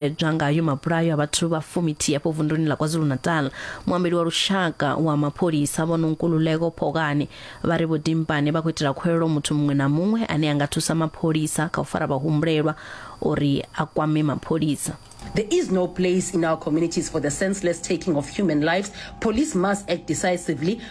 bveledzwa ngayo mabulayo a vhathu vha fumithi afho vunduni ḽa kwazulu-natal muambeli wa lushaka wa mapholisa vho nonkululeko phokani vha ri vho dimpane vha khou itela khwelelo muthu muṅwe na muṅwe ane a nga thusa mapholisa kha u fara vhahumbulelwa uri a kwame mapholisa There is no place in our communities for the senseless taking of human lives. Police must act decisively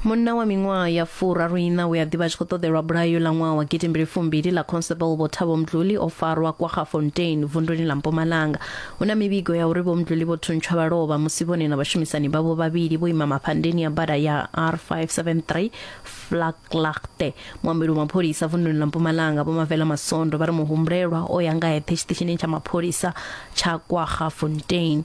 Munna wa miṅwaha ya furaru iṋa we a ḓivha a tshi khou ṱoḓelwa bulayo ḽa ṅwaha wa gidi mbili fumbili ḽa Constable Vho Thabo Mdluli o farwa KwaGafontein vunduni ḽa Mpumalanga. Hu na mivhigo ya uri Vho Mdluli vho thuntshwa vha lovha musi vhone na vhashumisani vhavho vhavhili vho ima mafhandeni ya bada ya R573 Vlakglaagte. Muambeli wa mapholisa vunduni ḽa Mpumalanga Vho Mavela Masondo vha ri muhumbulelwa o ya nga eṱhe tshiṱitshini tsha mapholisa tsha KwaGafontein.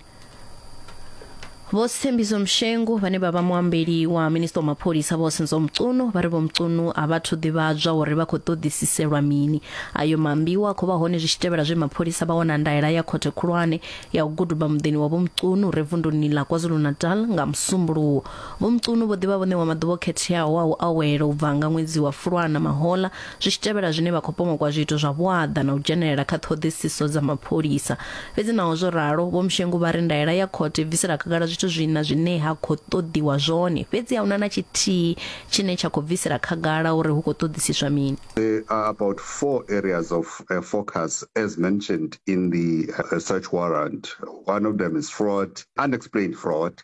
vho sithembiso mshengu vhane vha vha muambeli wa minista wa mapholisa vho senzo mcuno vha ri vho mcuno a vhathu ḓivhadzwa uri vha khou ṱoḓisiselwa mini ayo mambiwa khou vha hone zwi tshi tevhela zwe mapholisa vha wana ndaela ya khothe khulwane ya u guduba muḓini wa vho mcuno re vunduni ḽa kwazulu-natal nga musumbuluwo vho mcuno vho ḓivha vhone wa maḓuvha o khetheaho a u awela u bva nga ṅwedzi wa fulwana mahola Zwi tshi tevhela zwine vha khou pomokwa zwiito zwa vhuaḓa na u dzhenelela kha ṱhoḓisiso dza mapholisa. Fhedzi naho zwo ralo, Vho Mshengu vha ri ndaela ya khothe i bvisela khagala zwithu zwiṋa zwine ha khou ṱoḓiwa zwone, fhedzi a hu na na tshithihi tshine tsha khou bvisela khagala uri hu khou ṱoḓisiswa mini. There are about four areas of focus as mentioned in the search warrant. One of them is fraud, unexplained fraud,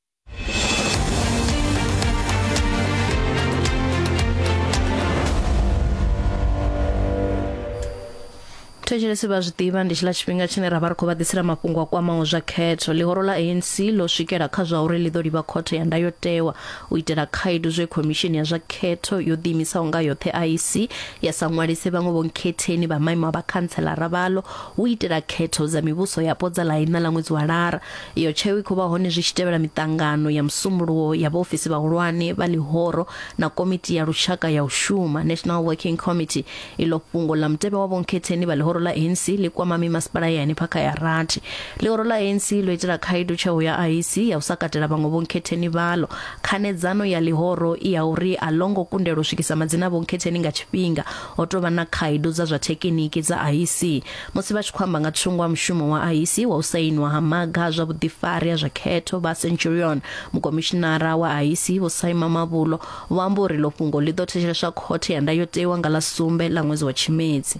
thetshelesi vha zwi ḓivha ndi tshiḽa tshifhinga tshine ra vha ri khou vha ḓisela mafhungo a kwamaho zwa khetho ḽihoro ḽa anc ḽo swikela kha zwa uri ḽi ḓo livha khothe ya ndayotewa u itela khaedu zwe khomishini ya zwa khetho yo ḓiimisaho nga yoṱhe iec ya sa ṅwalise vhaṅwe vhonkhetheni vha maimo a vhakhantshelara vhalo u itela khetho dza mivhuso yapo dza ḽaina ḽa ṅwedzi wa lara Iyo tsheo i khou vha hone zwi tshi tevhela miṱangano ya musumbuluwo ya vhaofisi vhahulwane vha ḽihoro na komiti ya lushaka ya u shuma National Working Committee. Iḽo fhungo ḽa mutevhe wa vhonkhetheni vha ḽihoro ḽa ANC ḽi kwama mimasipala ya henefha kha ya rathi. Ḽihoro ḽa ANC ḽo itela khaedu tsheo ya IEC ya u sa katela vhaṅwe vhonkhetheni vhaḽo. Khanedzano ya ḽihoro i ya uri a ḽo ngo kundelwa u swikisa madzina a vhonkhetheni nga tshifhinga. Ho tou vha na khaedu dza zwa thekiniki dza IEC. Musi vha tshi khou amba nga thungo ha mushumo wa IEC wa u sainwa ha maga a zwa vhuḓifari ha zwa khetho, vha Centurion, mukomishinara wa IEC Vho Saima Mavhulo, vho amba uri ḽo fhungo ḽi ḓo thetsheleswa khothe ya ndayotewa nga ḽa sumbe ḽa ṅwedzi wa Tshimedzi.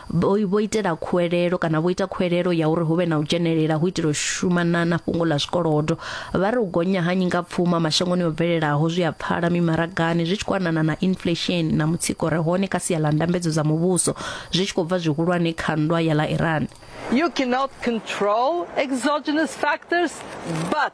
vho vho itela khuwelelo kana vho ita khuwelelo ya uri hu vhe na u dzhenelela hu itela u shuma na na fhungo ḽa zwikolodo vha ri u gonya ha nyingapfuma mashangoni o bvelelaho zwi a pfala mimaragani zwi tshi khou anana na inflation na mutsiko re hone kha sia ḽa ndambedzo dza muvhuso zwi tshi khou bva zwihulwane kha nndwa ya ḽa iran You cannot control exogenous factors, but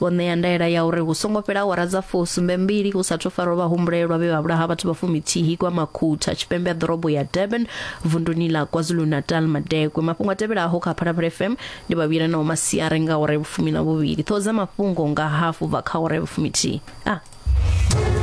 Vho ṋea ndaela ya uri hu songo fhela awara dza fusumbe mbili hu sathu farwa vhahumbulelwa vhe vha vhulaha vhathu vha fumithihi kwa Makhutha tshipembe ha ḓorobo ya Durban vunduni ḽa KwaZulu-Natal Madekwe. Mafhungo a tevhelaho kha Phalaphala FM ndi vhavhuyelanaho masiari nga awara ya vhufumi na vhuvhili, ṱhoho dza mafhungo nga hafu bva kha awara ya vhufumithihi. A.